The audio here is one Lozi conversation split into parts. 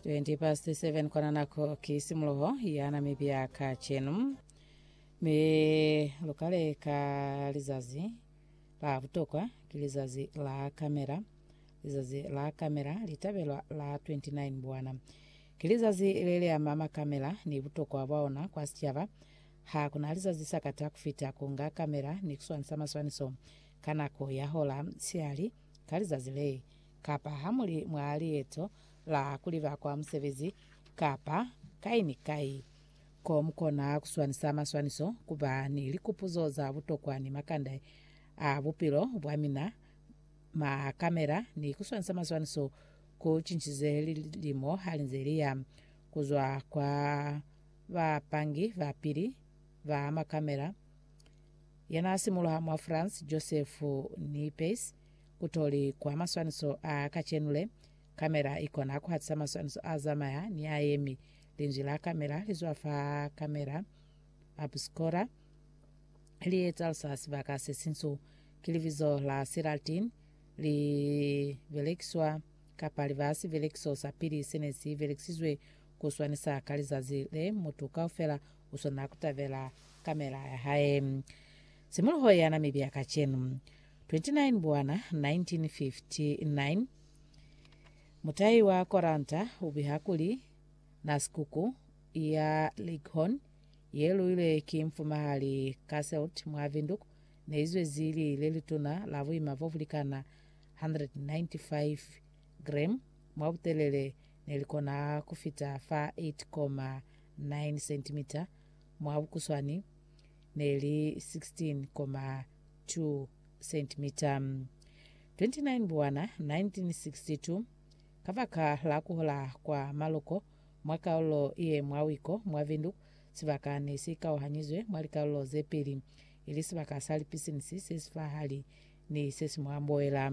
20 past 7 kwana nako ki simuloho ya namibia ka chenu me lukale ka lizazi la butokwa ki lizazi la kamera lizazi la kamera litabelwa la 29 bwana ki lizazi le le ama makamera ni butokwa bwa ona kwa sicaba ha kuna lizazi sakata kufita kunga kamera ni kuswanisa maswaniso ka nako ya hola siali Ka lizazi le, kapa ha mu li mwa lieto la ku liba kwa musebezi, kapa kai ni kai, ko mu kona ku swanisa maswaniso, ku ba ni likupuzo za butokwa ni makande a bupilo bwa mina, makamera, ni ku swanisa maswaniso ku cincize lilimo ha li nze li ya, ku zwa kwa bapangi ba pili ba makamera Yana simuluha mwa France, Joseph Niepce, kutoli kwa maswaniso a kacenule. Kamera ikona kuhatisa maswaniso a zamaya ni a yemi. Linzwi la kamera lizwa fa kamera obscura, li etalisa sibaka se sinsu. Ki libizo la Silatin, li belekiswa kapa li ba sibelekiso sa pili sene si belekisizwe ku swanisa ka lizazi le mutu kaufela U swanela ku tabela kamela ya hae simuluho ya Namibia kacenu, 29 Mbwana 1959. Mutahi wa koranta u biha kuli, Na sikuku ya Leghorn ye luilwe ki mfumahali Casselt mwa Windhoek ne i zwezi li le lituna la buima bo bu likana 195 gram mwa butelele ne li kona ku fita fa 8,9 9 sentimita mwa bukuswani ne li 16.2 sentimita. 29 Buwana 1962, kabaka la kuhola kwa maloko mwa kalulo ye mwa wiko mwa Windhoek, sibaka ne si kauhanyizwe mwa likalulo ze pili, ili sibaka sa lipisinisi se sifahali ni se si mwa mboela.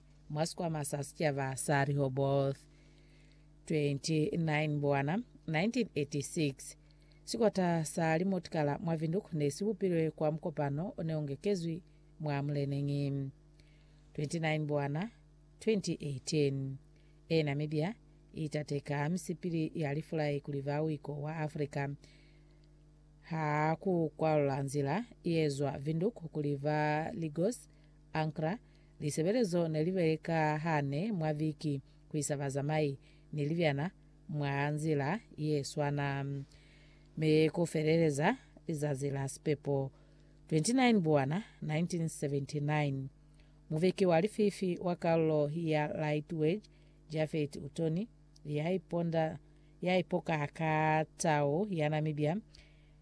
Mwa sikwama sa sicaba sa Rehoboth 29 Mbwana 1986, sikota sa limotikala mwa Windhoek ne si bupilwe kwa mukopano o ne u ngekezwi mwa muleneñi. 29 Mbwana 2018, e Namibia i tateka misipili ya lifulai kuli ba wiko wa Afrika ha ku kwalula nzila ye zwa Windhoek kuli ba Lagos Ankra, lisebelezo ne li beleka hane mwa viki ku isa bazamai ni libyana mwa nzila ye swana mi ku feleleza lizazi la sipepo 29 Buwana 1979. Muviki wa lififi wa kalulo ya Lightwedge, Japhet Utoni, ya iponda ya ipoka ka tau ya Namibia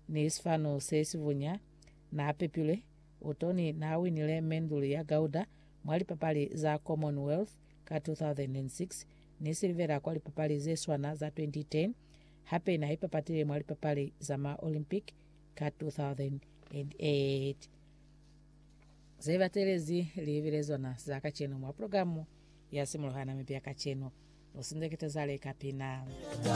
ni sifanu se si bunya, na pepilwe Utoni naawinile menduli ya gauda mwa lipapali za Commonwealth ka 2006 ni silivera kwa lipapali zeswana za 2010, hape naipapatile mwa lipapali za ma Olympic ka 2008. Zebatelezi liibile zona za kacenu mwa programu ya Simuluha Namibia Kacenu. Lusindekete zale ka pina.